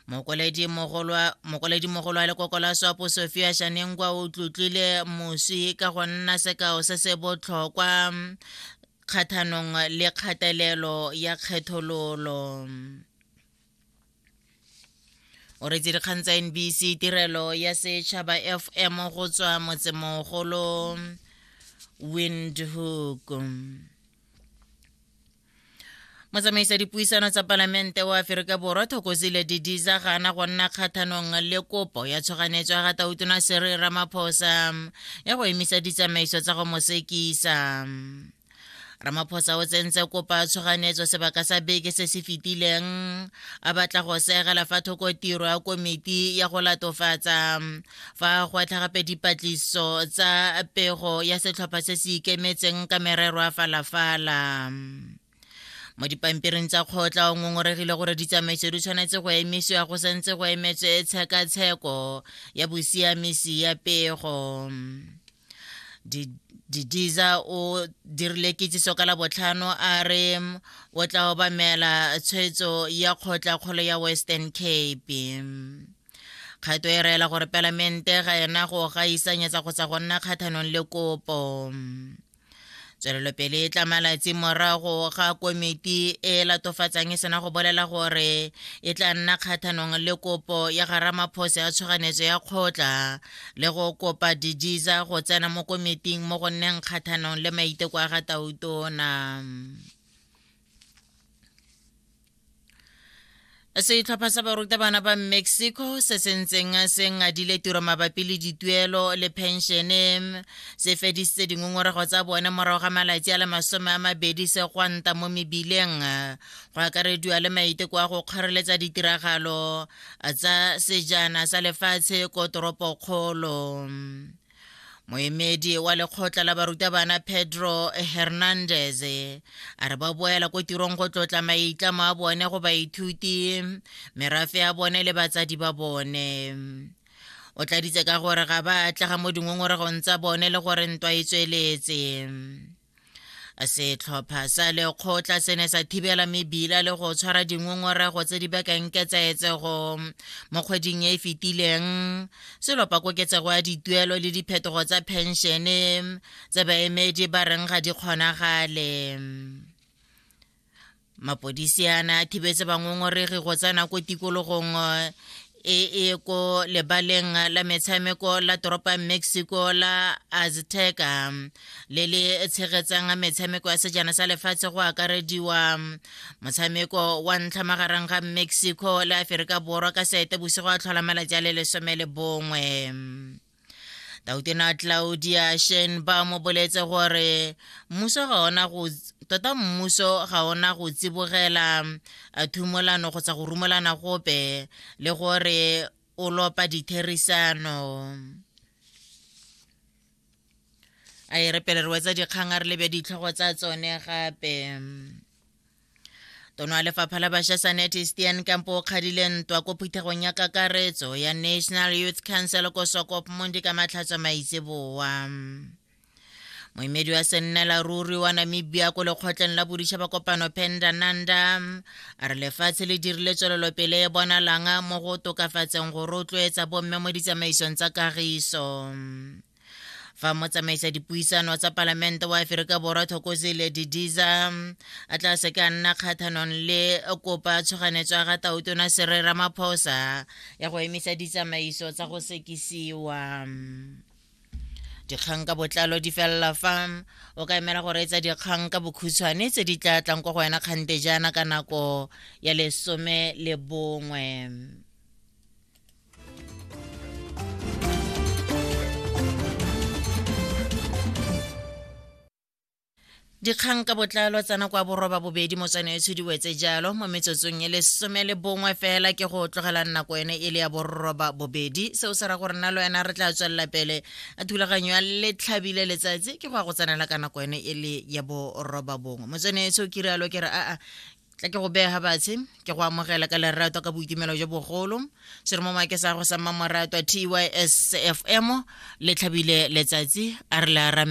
mokoledimogolo wa lekoko la swapo sofia shanengwa o tlotlile moswi ka go nna sekao se se botlhokwa kgathanong le kgatelelo ya kgethololo o retse dikgang tsa nbc tirelo ya setšhaba fm go tswa motsemogolo windhoek motsamaisa dipuisano tsa palamente wa aferika borwa thokozile didiza ga ana go nna kgathanong le kopo ya tshoganetso ya ga tautona sere ramaphosa ya go emisa ditsamaiso tsa go mo sekisa ramaphosa o tsentse kopa tshoganetso sebaka sa beke se se fetileng a batla go segela fa thoko tiro ya komiti ya go latofatsa fa go atlha gape dipatliso tsa pego ya setlhopha se se ikemetseng ka merero a falafala mo dipampiring tsa kgotla o ngongoregile gore ditsamaiso di tshwanetse go emisiwa go santse go emetswe tshekatsheko ya bosiamisi ya pego didiza o dirile kitsiso ka labotlhano a re o tla obamela tshwetso ya kgotla kgolo ya western cape kgato e reela gore palamente ga ena go gaisanyetsa kgotsa go nna kgathanong le kopo tswelelopele e tla malatsi morago ga komiti e latofatsang e sena go bolela gore e tla nna kgathanong le kopo ya ga ramaphosa ya tshoganyetso ya kgotla le go kopa dijiza go tsena mo komiting mo go nneng kgathanong le maiteko a ga tautona setlhopha sa barutabana ba mexico se se ntseng se ngadile tiro mabapi le dituelo le penšene se fedisitse dingongorego tsa bone morago ga malatsi a le masome a mabedi se gwanta mo mebileng go akarediwa le maiteko a go kgoreletsa ditiragalo tsa sejana sa lefatshe ko toropokgolo moemedi wa lekgotla la barutabana pedro hernandez a re ba boela ko tirong go tlotla maitlamo a bone go baithuti merafe ya bone le batsadi ba bone o tladitse ka gore ga ba atlega mo dingongorego tsa bone le gore ntwa e tsweletse setlhopha sa lekgotla se ne sa thibela mebila le go tshwara dingongorego tse di bakang ketsaetsego mo kgweding e e fetileng se lopa koketsego ya dituelo le diphetogo tsa phenšene tse baemedi ba reng ga di kgonagale mapodisi a ne a thibetse bangongoregi go tsena ko tikologong e e ko lebaleng la metshameko la toropo ya mexico la azteca le le tshegetsang metshameko ya sejana sa lefatshe go akarediwa motshameko wa ntlha magareng ga mexico le aferika borwa ka seete bosigo a tlhola malatsi a le lesome le bongwe tautena claudia shenba mo boletse gore mmuso ga ona go tota mmuso ga ona go tsibogela thumolano kgotsa go rumelana gope le gore o lopa ditherisano a e re pele re wetsa dikgang a re lebe ditlhogo tsa tsone gape tono ya lefapha la bašwa sanete stian kampo o kgadile ntwa ko phuthegong ya kakaretso ya national youth council ko sokop mondi ka matlhatswa maitseboa moemedi wa sennela ruri wa namibia ko lekgotleng la boditšhaba kopano penda nanda a re lefatshe le dirile tswelelopele e bonalanga mo go tokafatseng go rotloetsa bomme mo ditsamaisong tsa kagiso fa motsamaisa dipuisano tsa palamente wa aferika borwa thokozile didiza a tla se ka nna kgathanong le kopa tshoganetso ya ga tautona serera maphosa ya go emisa ditsamaiso tsa go sekisiwa dikgang ka botlalo di felela fa o ka emela go reetsa dikgang ka bokhutshwane tse di tla tlang kwa go wena kgante jaana ka nako ya lesome le bongwe dikgang ka botlalo tsena kwa boroba bobedi motsana e tshudiwetse jalo mo metsotsong e lesome le bongwe fela ke go tlogela nako ene e le ya boroba bobedi seo se ra gore nna le wena re tla tswelela pele a thulaganyo ya letlhabile letsatsi ke go ya go tsenela ka nako ene e le ya boroba bongwe motsana e tsho ke rialo ke re aa tla ke go bega batshe ke go amogela ka lerato ka boitumelo jo bogolo se re mo make sa go sa mmamoratwa tys fm le tlhabile letsatsi a re le arame